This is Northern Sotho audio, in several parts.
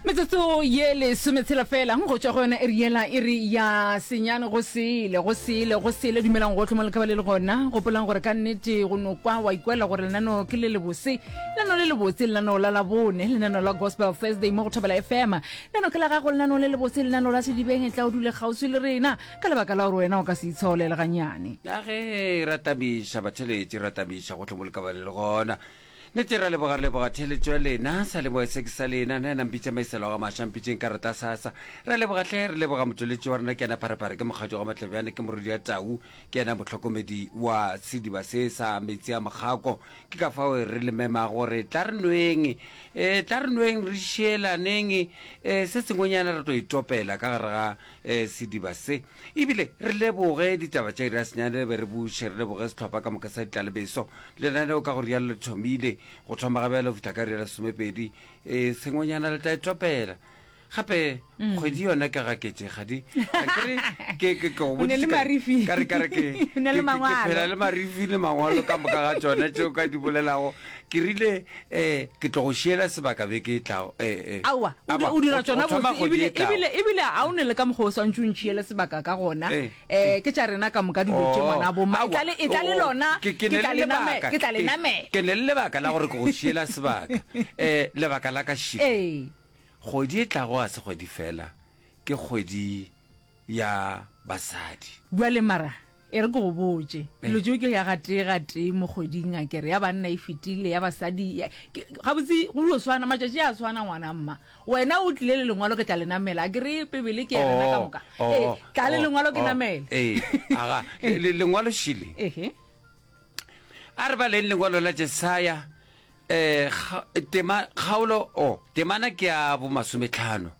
metsotso ye lesome tshela fela go tšwa go yona e riela e re ya senyane go sele go sele go sele dumelang go tlhoma lekaba le le gona gopolang gore ka nnete go no kwa wa ikwela gore lenano ke le lebose lenano le lebotse lenano la labone lenano la gospel thursday mo go thobela fm lenano ke la gago lenano le lebotse lenano la sedibeng e tla o dule kgauswi le rena ka lebaka la gore wena o ka se itshaolele ganyane ya ge ra tabiša batheletši ra tabiša go tlhomo lekaba le le gona Nete ra leboga re leboga theeletšo ya lena sa leboge se ke sa lena na ena mpitša maiselo ga maša mpitšeng ka rata sa sa ra leboga hle re leboga motšweletši wa rena ke ena pharephare ke mokgatšo ga matlebjane ke morodi ya tau ke ena motlhokomedi wa sediba se sa metsi a mokgako ke ka fao re le mema gore tla re nweng e tla re nweng re šeelaneng e se sengwenyana re tlo itopela ka gare ga e, sediba se E bile re leboge ditaba tša Irasenyane be re buše, re leboge sehlopha ka moka sa ditlalebeso. Lenaneo ka go rialo le thomile. Go thoma ga bjale go fihla ka iri ya lesomepedi e sengwenyana le tla e topela. Gape mm. kgwedi yona ke ga ketse kgadi ke ke go botsisa ka re ka re ke ke phela le marifi le mangwalo ka moka ga tsone tšeo ka di bolelago Ke rile, Ee, ke tlo go šiela sebaka beke e tlago. Ee, ee. Aowa, o di, Aba, o dira go- tšona go thoma botse, kgwedi ebile, e tlago. ebile, ebile ga o ne le ka mokgwa o swantše o ntšhiele sebaka ka gona. Ee, Eh, ke tša rena ka moka dilo tše, Oh, ngwanabo. Ma, e aowa, tla le, e tla le oh, lona, ke- ke ke ne tla le le name, lebaka, ke tla le ke- namela. Ke ne le lebaka la gore ke go šiela sebaka. Eh, lebaka la ka šiko. Ee. Kgwedi e tlago ga se kgwedi fela, ke kgwedi ya basadi. Bjale mara e re ke go botše, dilo tšeo ke ya gatee gatee mo kgweding a kere, ya banna e fetile, ya basadi ya, ke, gabotse go dio swana, matšatši a swana ngwana mma. Wena o tlile le lengwalo ke tla le namela, a ke re Bibele ke ya rena ka moka. Oh, Ee, oh, tla le oh, lengwalo ke oh, namele. Ee, aga, le, le, lengwalo šile. Ehe. A re baleng lengwalo la Jesaya, eh, kga, tema, kgaolo, oh, temana ke ya bomasometlhano.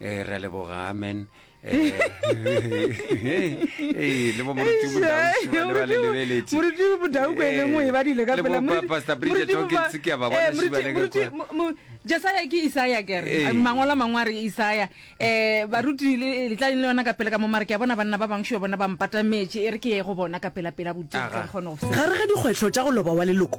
Eh, re a leboga amen Eh, eh, le bo moruti Bodaosi ba le ba le lebeletše. moruti bodau ko ele nngwe e badile ka Eh, le pela bo Pa- Pastor Bridget Hawkins ke a ba bona šiba le ka kwa. jesaya ke isaya kere Eh. mangwalo a mangwe a re isaya um baruti le le tla le yona ka pele ka mo mare ke a bona banna ba bangwe šo bona ba mpatametše e re ke ye go bona ka pelapela bodimo Aga. ka kgone go ga re ga dikgwetlho tša go loba wa leloko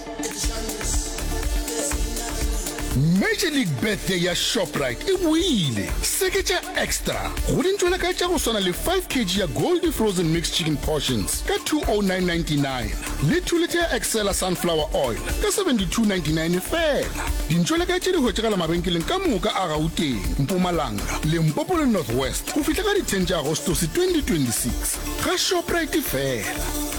Major League Birthday ya Shoprite e boile! Seketša Extra go dintwela ka tša go swana le 5 kg ya Goldie Frozen Mixed Chicken Portions ka 209.99 le 2 litha ya Excella Sunflower Oil ka 72.99 feela. Dintwela ka tše di hwetšagala mabenkeleng ka moka a Gauteng, Mpumalanga, Limpopo le North West go fihla ka di 10 tša Agostose 2026. Ga Shoprite feela!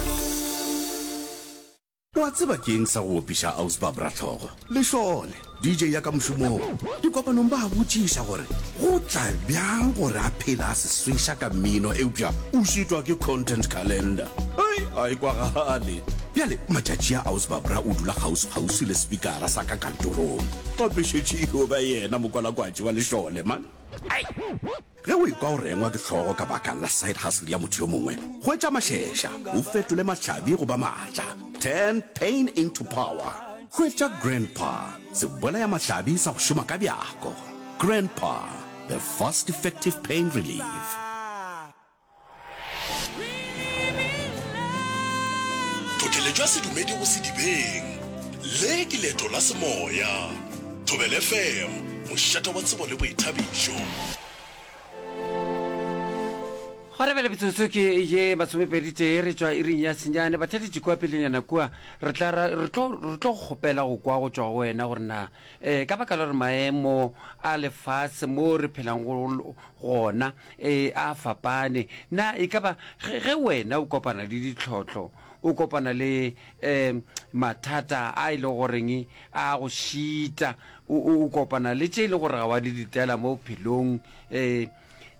O a tseba ke eng sa go opiša Ausbab Rahlogo? Lešole, DJ ya ka mošomong, dikopanong ba a botšiša gore go tla bjang gore a phele a se sweša ka mmino eupša o šitwa ke content calendar. Hei, a e kwagale. Bjale matšatši a Ausbab Ra o dula kgauswi-kgauswi le sepikara sa ka kantorong. Gape šetše e yo ba yena mokwalakwatši wa Lešole, man. Hei! Ge o ekwa o rengwa ke hlogo ka baka la side hustle ya motho yo mongwe, hwetša mašeša o fetole mahlabi go ba maatla. Turn pain into power. Hwetša Grandpa, sebolaya mahlabi sa go šoma ka bjako. Grandpa, the fast effective pain relief. Tlhotlheletšo ya sedumedi go sedibeng. Le ke leeto la semoya. Thobela FM, mošate wa tsebo le boithabišo. Gwa re bjale metsotso ke ye masomepeditee re tšwa iring ya senyane. Bathati Jikowa, pelenyana kua re tla ra re tlo re tlo go kgopela go kwa go tšwa go wena gore na Ee, ka baka la gore maemo a lefase mo re phelang go gona ee, a fapane, na e ka ba ge, ge wena o kopana le ditlhohlo, o kopana le um mathata a e le goreng a go šita, o, o, o kopana le tše e le gore ga wa di letela mo bophelong, um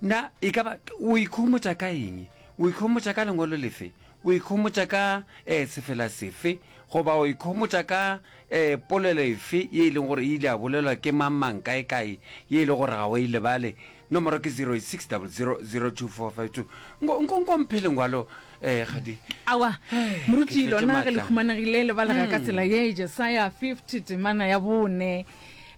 na e ka ba o ikhomotša ka eng? O ikhomotša ka lengwalo lefe? O ikhomotša ka ee sefela sefe? Goba o ikhomotša ka ee polelo efe ye e leng gore e ile ya bolelwa ke mang-mang kae-kae ye e le gore ga o e lebale? Nomoro ke 0600024522. Nko, nko, nko mphe lengwalo, ee, kgadi. Aowa, Hee, ke Moruti, tletse lona ge le matla. humanegile le balega ka tsela ye, Jesaya 50, temana ya bone,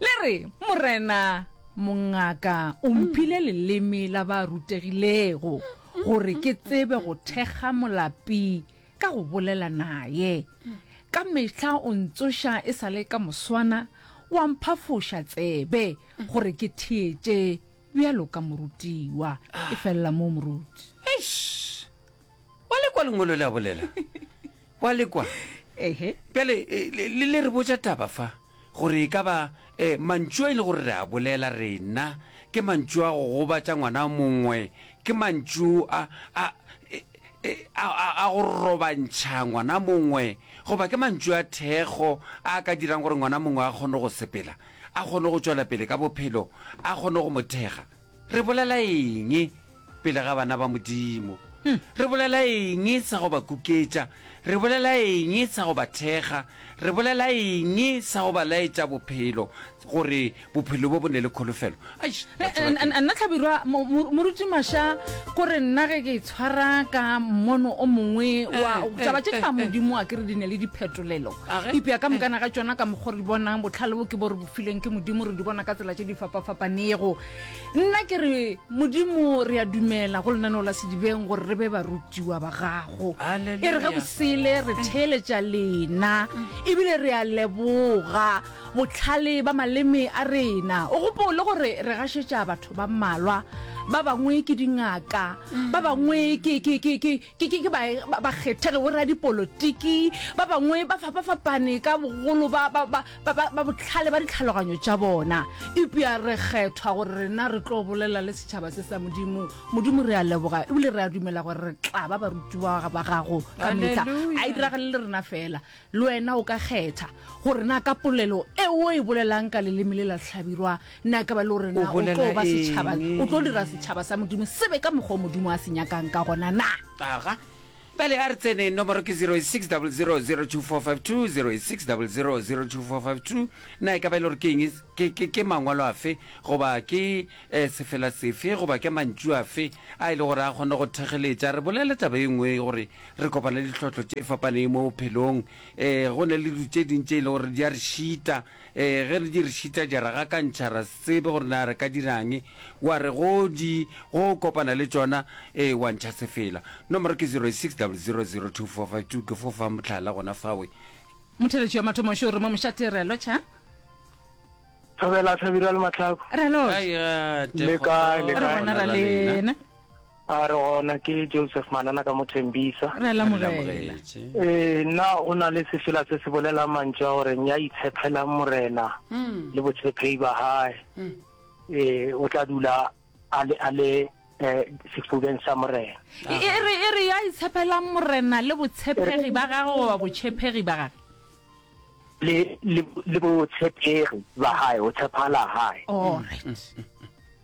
le re, Morena, mongaka o mphile leleme la ba rutegilego. gore ke tsebe go thekga molapi ka go bolela naye ka mehla o ntsoša e sa le ka moswana wa mphafoša tsebe gore ke theetše bjalo ka morutiwa e felela moo moruti Eish! wa lekwa lengolo le a bolela wa lekwa ehe bjale eh, le le- le re botša taba fa Gore e ka ba, e, mantšu a e le gore re a bolela rena, ke mantšu a go gobatša ngwana mongwe, ke mantšu a, a, e, e, a, a, a go robantšha ngwana mongwe, goba ke mantšu a thekgo a a ka dirang gore ngwana mongwe a kgone go sepela, a kgone go tšwela pele ka bophelo, a kgone go mo thekga. Re bolela eng pele ga bana ba Modimo? Re bolela eng sa go ba kuketša? Re bolela eng sa go ba thekga? Re bolela eng sa go ba laetša bophelo, gore bophelo bo bo ne le kholofelo? Aish, batho ba ke. Nna Hlabirwa, mo, mo, Moruti Masha, ko re nna ge ke tshwara ka mmono o mongwe wa Eh, taba tše eh, tša eh, eh. Modimo, a ke re di ne le diphetolelo. A ge? Eupša ka mokana ga tšona, ka mokgwa o re di bonang, bohlale bo ke bo re filweng ke modimo re di bona ka tsela tse di fapafapanego nna ke re modimo re a dumela go lenaneo la sedibeng gore re be barutiwa ba gago e re ge bosele re theeletša lena ebile re a leboga botlhale ba maleme a rena o gopole gore re gašetša batho ba mmalwa ba bangwe ke dingaka ba bangwe ke Ke ke ke ba ba kgethege bo radipolotiki ba bangwe ba fapa fapane ka bogolo ba ba ba ba ba ba botlhale ba ditlhaloganyo tša bona ipya re kgethwa gore rena re tlo bolela le setšhaba se sa modimo modimo re a leboga ebile re a dumela gore re tla ba barutiwa ba gago ka metlha a e diragale le rena fela Le wena o ka kgetha gore na ka polelo e o e bolelang ka leleme le la hlabirwa na ka ba le gore na o tlo ba setšhaba, o tlo dira setšhaba sa Modimo se be ka mokgwa o Modimo a se nyakang ka gona na. Aga. Bjale a re tseneng, nomoro ke 08600022452, 08600022452. Na e ka ba e le gore ke eng, ke, ke, ke mangwalo afe, goba ke eh, sefela sefe, goba ke mantšu afe a e le gore a kgona go thegeletša? Re bolela taba e nngwe gore Re kopana le dihlotlo tše fapaneng mo bophelong. Ee, go na le dilo tše ding tše e le gore di a re šita. Ee, ge re di re šita, di a re gakantšha, ra se tsebe gore na re ka dira'ng. Wa re go di, go kopana le tšona, ee, wa ntšha sefela. Nomoro ke 0860002452. Ke fo fa mohlala gona fawe. Motheletši wa mathomo šo re mo mošate re a lotšha. Thobela Hlabirwa le Mahlaku. Re a lotšha. Hai ga te Leka, kgotso. leka. Re gona ra lena. A re gona ke Joseph Manana ka mo Tembisa. Re a lamogela. Ee, na o na le sefela se se bolelang mantšu a gore ya itshepelang Morena le botshephehi ba hae, ee, o tla dula a le, a le eh, sefubeng sa Morena. E, e re, e re ya itshepelang Morena le botshepegi ba gage goba botšhephegi ba gage? Le, le, le botshepegi ba hae, go tshephala hae. All right.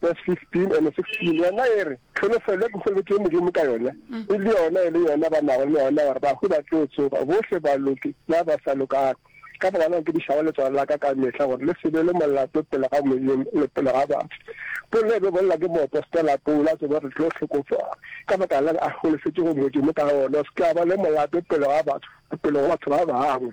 verse 15 and 16 yona e re tlholofelo ke kgolobetso modimo ka yona e le yona e le yona ba nago le yona gore bahu ba tlo tsoga bohle ba loke ba ba sa lokago ka baka la ke dišago letswalo la ka ka mehla gore le sebe le molato pele ga modimo le pele ga batho pole be bolela ke moopostola paulo a tsebe re tlo hlokofala ka baka la a golofetse go modimo ka gona o se ka ba le molato pele ga batho pele go batho ba bangwe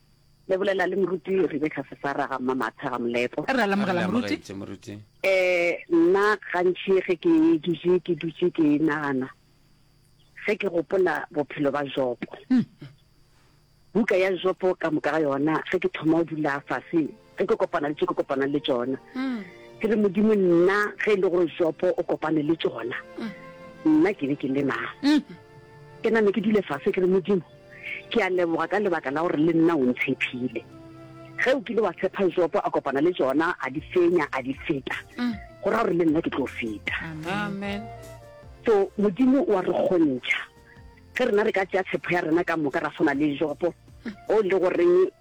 Le bolela le Moruti Rebecca Sesara ga Mmamatha ga Molepo. Re a lamogela Moruti. Moruti. Eh, nna gantši ge ke dutše ke dutše ke nagana ge ke gopola bophelo ba Jopo. Hmm. Buka ya Jopo ka moka ga yona ge ke thoma o dula fase ge ke kopana le tše ke kopanang le tšona mm. ke re modimo nna ge e le gore jopo o kopane le tšona mm. nna ke be ke le mang mm. ke name ke dule fase ke re modimo ke a leboga ka lebaka la gore le nna o ntshephile ge o kile wa tshepa jopo a kopana le tšona a di fenya a di feta go ra gore le nna ke tlo feta so modimo wa re kgontšha ge rena re ka tšea tshepo ya rena ka moka ra tshwana le jopo o le goreng